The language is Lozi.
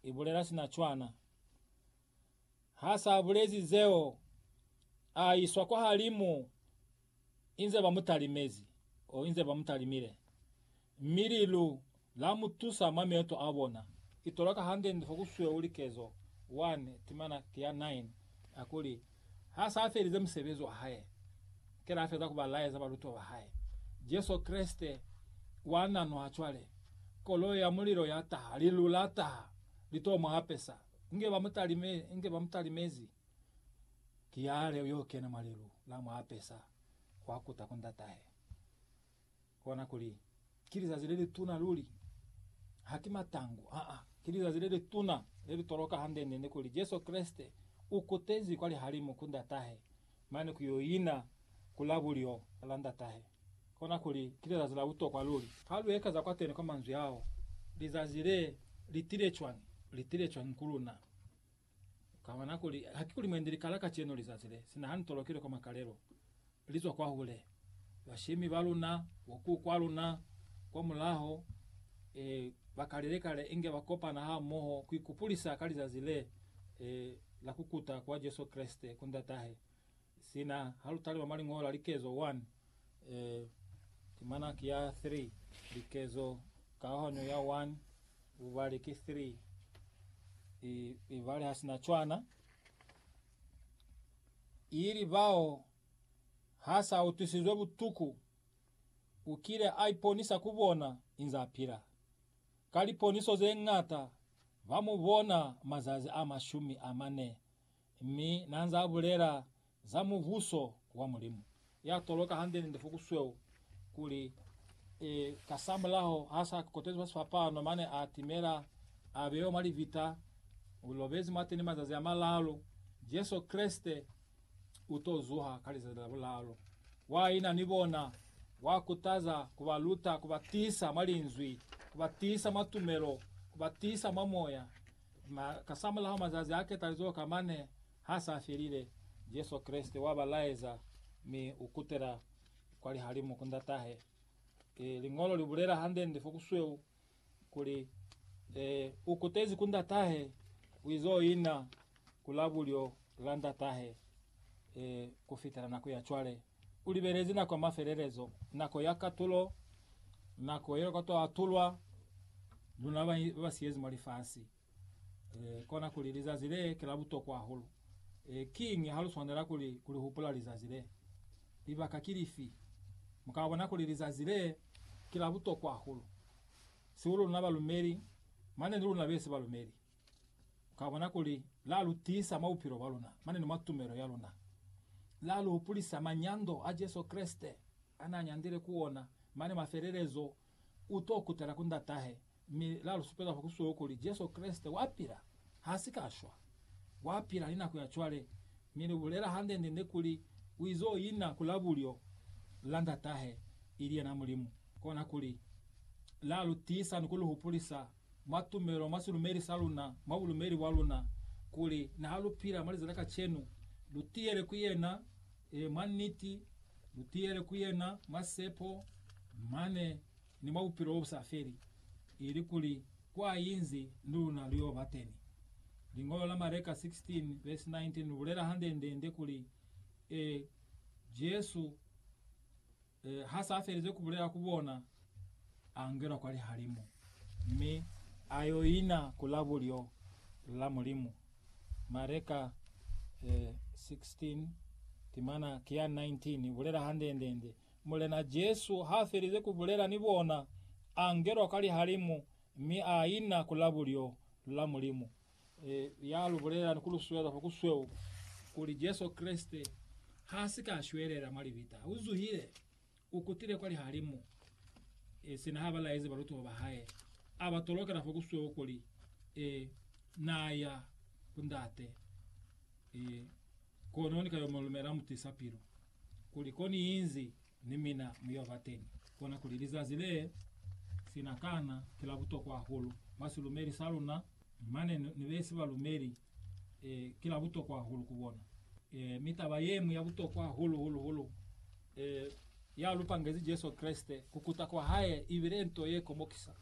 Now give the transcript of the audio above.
i bulela sina cwana. Ha sa bulezi zeo, a iswa kwa halimu inze ba mu talimezi, o inze ba mu talimile, mi lilu la mu tusa mwa mioto a bona. Ki toloka hande nde fo ku sweu likezo 1, timana ki ya 9, a kuli. ha sa felize musebezi wa hae kela a feza ku ba laeza balutiwa ba hae. Jesu Kreste wa nanwa cwale. Koloi ya mulilo ya taha, lilu la taha, li t'o mu apesa. Inge ba mu talime, inge ba mu talimezi, ki yale yo kena mwa lilu, la mu apesa, wa kuta ku Ndatahe. Kona kuli, Ki lizazi le lituna luli. Haki matangu, aa, ki lizazi le lituna, le li toloka hande-nde kuli Jesu Kreste u kutezi kwa lihalimu ku Ndatahe, mane ku yo ina ku la bulyo la Ndatahe. Kona kuli, ki lizazi la butokwa luli. Ha lu ekeza kwateni kwa manzwi ao, lizazi le li tile cwañi? Li tile cwañi ku luna? Ukabona kuli hakikuli mwendi likala kacenu lizazi le sina hanu tolokile kwa makalelo, lizwa kwahule. Bashemi baluna, bokuku baluna kwamulaho, e, bakalile kale inge bakopana hamoho kuikupulisa ka lizazi le, e, la kukuta kwa Jesu Kreste ku Ndatahe, Sina ha lu talima mwa liñolo la likezo 1, e, timana ki ya 3, likezo kahahanyo ya 1, bubali ki 3, i, ibali ha sina cwana, ili bao ha sa utwisizwe butuku, u kile a iponisa ku bona inze a pila. Ka liponiso ze ñata, ba mu bona mazazi a mashumi a mane mi nanza abulela za Mubuso wa Mulimu. Ya toloka hande ni lifuku sweo kuli, E, ka sa mulaho ha sa kokotezwi fa sifapano mane a timela a bewa mwa libita, u lobezi mwateni mazazi a malalu, Jesu Kreste u to zuha ka lizazi la bulalu. Wa ina ni bona, wa kutaza, ku ba luta, ku ba tisa mwa Linzwi, ku ba tisa mwa tumelo, ku ba tisa mwa Moya. Ma, kasamulaho mazazi a ketalizo ka mane ha sa felile, Jesu Kreste wa ba laeza, mi u kutela kwa lihalimu ku Ndatahe. Ki Liñolo li bulela hande-nde fo ku sweu, kuli, E, u kutezi ku Ndatahe, u izo ina ku labulyo la Ndatahe, e, ku fitela nako ya cwale. U libelezi nako ya mafelelezo, nako ya katulo, nako yeo koto atulwa luna ba ba siyezi mwa lifasi. E, kona kuli lizazi le ki la butokwa hahulu. E, kiñi ha lu swanela kuli kuli hupula lizazi le? Libaka ki lifi? Mu ka bona kuli lizazi le ki la butokwa hahulu, sihulu luna balumeli, mane ni luna besi balumeli. Ka bona kuli la lu tiisa mwa bupilo bwa luna mane ni mwa tumelo ya luna. La lu hupulisa manyando a Jesu Kreste a n'a nyandile ku ona mane mwa felelezo, U t'o kutela ku Ndatahe, mi la lu supeza fa ku sulo kuli Jesu Kreste wa pila, h'a si ka shwa. Wa pila ni nako ya cwale, mi lu bulela hande-nde-nde kuli u iz'o ina ku la bulyo la Ndatahe, ili yena Mulimu. Kona kuli la lu tiisa ni ku lu hupulisa mwa tumelo mwa silumeli sa luna, mwa bulumeli bwa luna, kuli niha lu pila mwa lizazi la kacenu, lu tiyele ku yena, e, mwa niti, lu tiyele ku yena mwa sepo, mane ni mwa bupilo bo bu sa feli, ili kuli kwa inzi ni luna lu yo ba teni. Liñolo la Mareka 16 verse 19 lu bulela hande-nde-nde kuli, e, Jesu, E, ha sa felize ku bulela ku bona, a ngena kwa lihalimu, mi a yo ina ku la bulyo la Mulimu. Mareka e, 16, timana ki ya 19 i bulela handende-nde, Mulena Jesu ha felize ku bulela ni bona, a ngelwa kwa lihalimu, mi a ina ku la bulyo la Mulimu. E, ya lu bulela ni ku lu sueza fa ku sweu kuli Jesu Kreste ha si ka shwelela mwa libita. U zuhile, u kutile kwa lihalimu, e, sina ha ba laezi balutiwa ba hae, a ba tolokela fa ku sweu kuli, e, Na ya ku Ndate, e, kono ni ka yo mu lumela mutisa pilu, kuli ko ni inzi, ni mina mu yo ba teñi. Kona kuli lizazi le, sina kana ki la butokwa hahulu mwa silumeli sa luna. Mane ne be si ba lumeli e, ki la butokwa hahulu ku bona. E, mi taba ye ñwi ya butokwa hahulu, hulu, hulu, e, ya lu pangezi Jesu Kreste, ku kuta kwa hae, ibile nto ye komokisa.